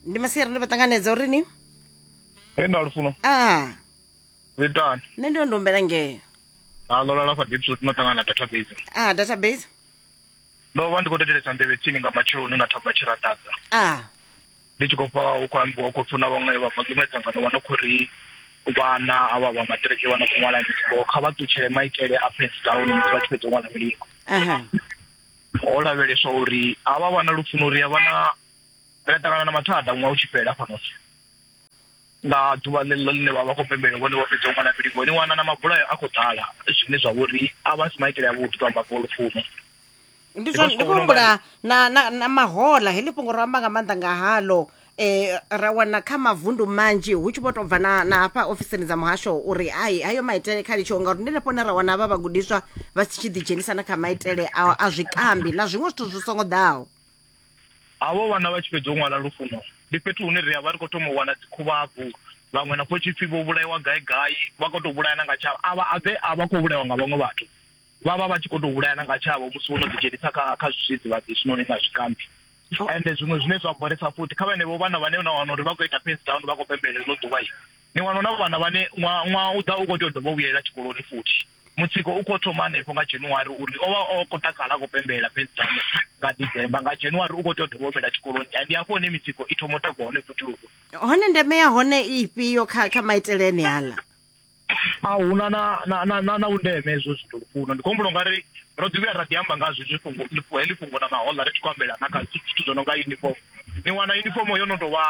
ndi masiari ndo vha ṱanganedza uri ni Hey na lufuno. ah Zitani. nṋe ndo ndo humbela ngeo Ha lola la fa deep suit no tangana database. ah database Ndo vha ndi khou thetshelesa nḓevhe tsini nga matsheloni na thamba tshiratadza. ah Ndi tshi khou pfa hu khou ambiwa khou pfuna vhaṅwe vha maḓumwe dzangano vha no khou ri vhana avha vha maṱiriki vha no khou ṅwala milingo kha vha ṱutshele maitele a pens down musi vha tshi fhedza u ṅwala milingo. aha ho lavheleswa uri a vha vha na lufuno ri a vha na ri a ṱangana na mathada ṅwaha u tshi fhela fhano nga ḓuvha ḽeḽo ḽine vha vha khou pembela vhone vha fhedza u ṅwana fhili vhoni wana na mabulayo a khou ḓala zwine zwa vhori a vha si maitele avhuḓi to amba fho lufuno ndi zwa ndi khou humbula na na na mahola heḽi fhungo ro amba nga maanḓa nga halo e, ra wana kha mavundu manzhi hu tshi vho tou bva na, na hafha ofisini dza muhasho uri hai hayo maitele kha litshiwo ngauri ndi nafho ne ra wana havha vhagudiswa vha si tshi ḓidzhenisa na kha maitele a, a zwikambi na zwiṅwe zwithu zwi songo ḓaho havho vhana vha tshi fhedza u ṅwala lufuno ndi fhethu hune ri a vha ri khou thoma u wana dzikhuvhabvu vhaṅwe na khotshipfi vho vhulaiwa gai gai vha khou tou vhulayana nga tshavho avha a vha khou vhulaiwa nga vhaṅwe vhathu vha vha vha tshi kho to vhulayana nga tshavho musi vho no ḓi dzhenisa kha kha zwidzidzivhadzi zwiṋoni na zwikambi oh. ende zwiṅwe zwine zwa boresa futhi kha vhenevho vhana vhane na wana uri vha khou ita fence down vha khou pembelela ḽo ḓuvha i ni wana na vhana vhane ṅwaha u ḓa u khou tea u dovha u vhuyelela tshikoloni futhi mutsiko u khou thoma hanefho nga january uri o vha o khou takala a khou pembelela fence down nga december nga january u khou tea u dovha humela tshikoloni ndi hafho hune mitsiko i thoma u takuwa hone futhi hone ndeme ya hone ifhio kha kha maitele ene aḽa a huna na na na na na undeme hezwo zwithu lufuno ndi khombulo ngari ro ḓi vhuya ra ḓi amba nga zwi zwi fhungo ḽi fhungo ḽi fhungo na mahoḽa ri tshi khou ambela na kha zwithu zwo no nga uniform ni wana uniform yo no tovha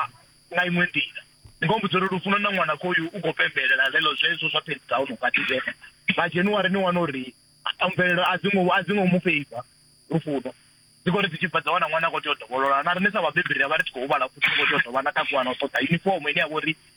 nga iṅwe nḓila ndi khou mbudza uri lufuno na ṅwana khoyu u khou pembelela lelo zwezwo zwa phenzi dza ono nga dzhene nga January ni wana uri a mvelelo a dzingo a dzingo mu feiva lufuno dzi khou ri dzi tshi bva dza wana ṅwana a khou tea u dovholola na riṋe sa vhabebi ri vha ri tshi khou huvhala futhi ri khou tea u dovha na takuwa na u ṱoḓa uniform ine ya vha uri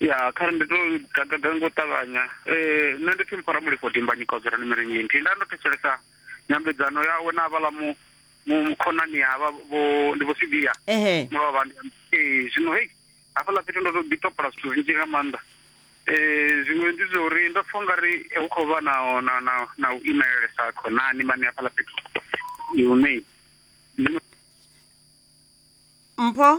ya kha ndi to gagaga ngo ṱavhanya eh nṋe ndi pfi mphora mulifho dimbanyi kozera ni miringi nthihi nda ndo thetshelesa nyambedzano yawe na avhala mu mu khonani havha vho ndi vho sibiya ehe mulovha eh zwino hey hafhaḽa fhethu ndo to ḓi topola zwithu zwinzhi nga maanḓa eh zwiṅwe ndi zwa uri ndo pfha ungari hu khou vha na na na na u imelelesa khonani mani hafhaḽa fhethu hune ndi mpho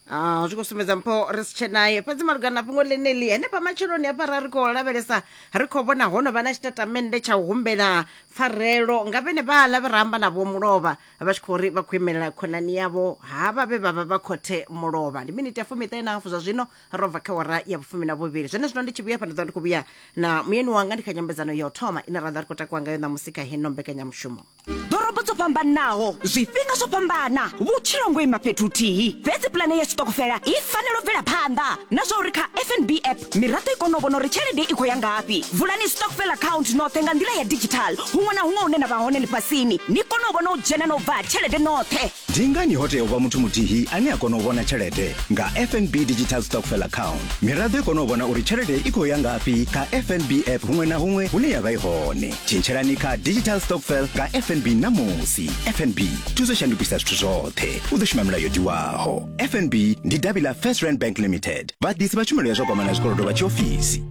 Ah, zwi khou sumbedza mpho ri si tshenaye fhedzi malugana na fhungo ḽeneḽi henefha matsheloni hafha ra ri khou lavhelesa ri khou vhona ho no vha na tshitatamennde tsha u humbela pfarelo nga vhene vhaḽa vhe ra amba na vho mulovha vha tshi khou ri vha khou imelela khonani yavho havha vhe vha vha vha khothe mulovha ndi miniti ya fumiṱahe na hafu zwa zwino ro bva kha wara ya vhufumi na vhuvhili zwene zwino ndi tshi vhuya fha ndi ḓo ndi khou vhuya na muyeni wanga ndi kha nyambedzano ya u thoma ine ra ḓa ri khou takuwa ngayo ṋamusi kha heno mbekanyamushumo ḓorobo dzo fhambanaho zwifhinga zwo fhambana vhutshilo ngo ima fhethu huthihi fhedzi pulane ya tshiṱokofela i fanela u bvela phanḓa na zwa uri kha fnb app miraḓo i kone u vhona uri tshelede i khou ya ngafhi vulani stockfel account noṱhe nga nḓila ya digital huṅwe na huṅwe hune na vha hone ḽifhasini ni kone u vhona u dzhena na u bva ha tshelede noṱhe Ndi ngani ho tea u vha muthu muthihi ane a kona u vhona tshelede nga FNB Digital Stockfell Account? Miraḓo i kona u vhona uri tshelede i khou ya ngafhi kha FNB app huṅwe na huṅwe hune ya vha i hone. Tshintshelani kha Digital Stockfell nga FNB ṋamusi. FNB, thuso shandukisa zwithu zwoṱhe. U ḓo shuma milayo yo tiwaho. FNB ndi davhi ḽa First Rand Bank Limited, vhaḓisi vha tshumelo ya zwa kwamana zwikolodo vha tshiofisi.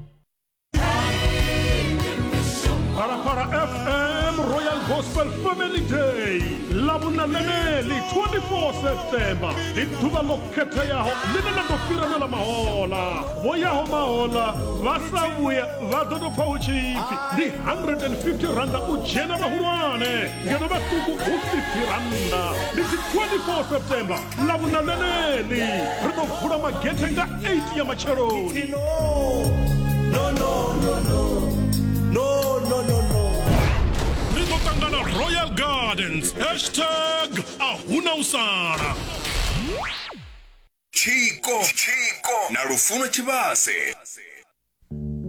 Parapara FM Royal Gospel Family Day lavhunananeli 24 septemba ndi ḓuvha ḽo khetheaho ḽine ḽa ḓo fhiranela mahola vho yaho mahola vha sa vhuya vha ḓo tou pfa hu tshi ipfi ndi 150 randa u dzhena vhahulwane ngeno vhaṱuku hu 50 randa ndi dzi 24 septemba na vhunananeli ri ḓo vula magethe nga 8 ya matsheloni ri ḓo ṱangana royal gardens hashtag a huna u sala tshiko na lufuno tshivhase